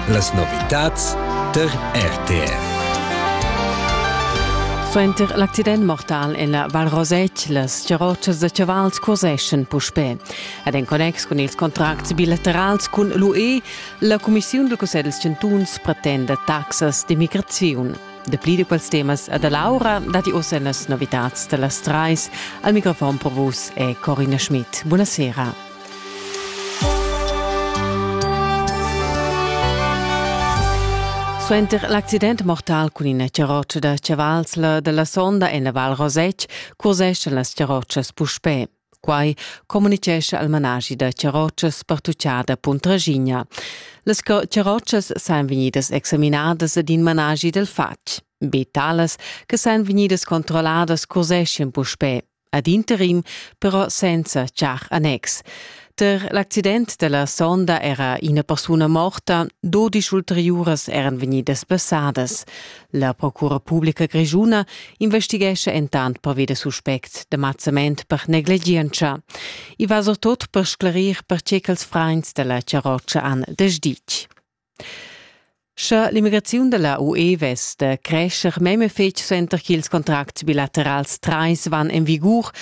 Las novitads tar RTR. Suenter l'accident mortal en la Val Rosette, las charrotschas da chavals curseschan puspè. Ed en connex cun ils contracts bilaterals cun l'UE, la Cumissiun dal Cussegl dals chantuns pretenda taxas d'immigraziun. Dapli di quels temas ad Laura dati ossa en las novitads da las trais. Al microfon per vus è Corina Schmidt. Buonasera. Suenter l'accident mortal cun ina charrotscha da chavals la dalla sonda en la Val Rosetg curseschan las charrotschas puspè. Quai communicescha al managi da charrotschas partucciada Puntragigna. Las charrotschas san vegnidas examinadas ed in managi del fatg. Be talas che san vegnidas controlladas curseschan puspè ad interim però senza char annex. Per l'accident della sonda era ina persuna morta, dodisch ulteriuras eran vegnidas passadas. La procura pubblica grigiuna investighescha entant pervi da suspect de mazzament per negligientscha. I va surtot per sclarir per tge ch'els frains della charroccia han desditg. Sche l'immigraziun da la UE vess da crescher memia fetg suenter ch'ils contracts bilaterals trais van en vigur,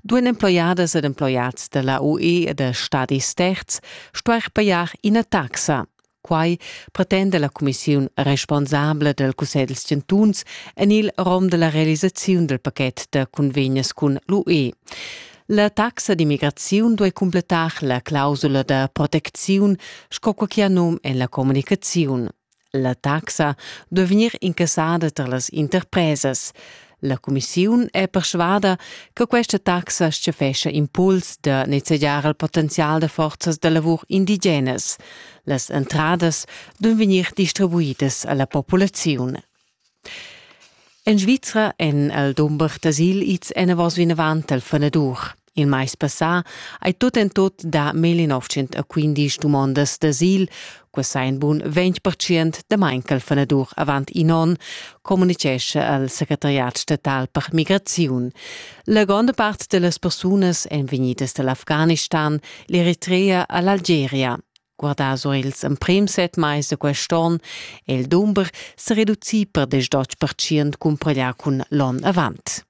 duan emploiadas ed emploiads da la UE e da stadis terz stuair pajar ina taxa. Quai pretenda la cumissiun responsabla dal Cussegl dals chantuns en il rom da la realisaziun dal paket da cunvegnas cun l'UE. La taxa d'immigraziun duei cumpletar la clausula da protecziun sco quei che ha num en la communicaziun. La taxa duei vegnir incassada tar las interpresas. La cumissiun è persvada che questa taxa schefescha impuls da nezegiar il potenzial da forzas da lavur indigenas. Las entradas duein vegnir distribuidas alla populaziun. En Svizra èn el dumber d'asil ids enavos vinavant al fanadur. Il mais passà hai tut en tut dà 1915 dumondas d'asil, quai sa in bun 20% damain ch'al fanadur avant in onn, communitgescha al secretariat statal per migraziun. La gronda part da las persunas èn vegnidas da l'Afghanistan, l'Eritrea a l'Algeria. Guardà sur ils emprims set mais da quest onn è il dumber sa reducì per desch percent cumpareglià cun l'onn avant.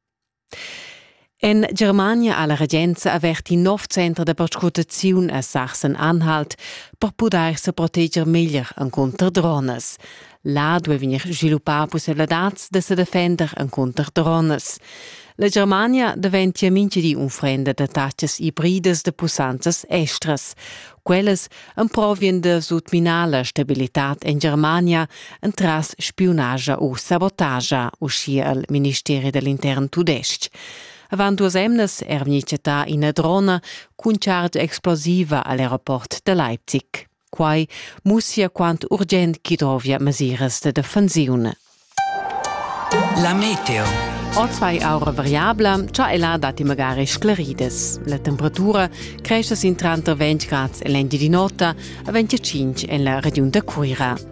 En Germania ha la regenza avert in nov center da perscrutaziun a Sachsen-Anhalt per pudair sa proteger meglier encunter dronas. Là duai vegnir sviluppà pussaivladads da sa defender encunter dronas. La Germania daventia mintga di unfrenda da tatgas ibridas da pussanzas estras. Quellas emprovien da sutminar la stabilitad en Germania entras spiunagia u sabotagia, uschia al ministeri dell'intern tudestg. Avant duas emnas è vegnì chattà ina drona cun chargia explosiva a l'aeroport da Leipzig. Quai mussia quant urgent ch'i dovia mesiras da defensiun. La meteo. Ozai aura variabla, cha ella datti magari sclaridas. La temperatura cresce sin tranter 20 grads e l'engiadin'ota a 25 en la regiun da Cuira.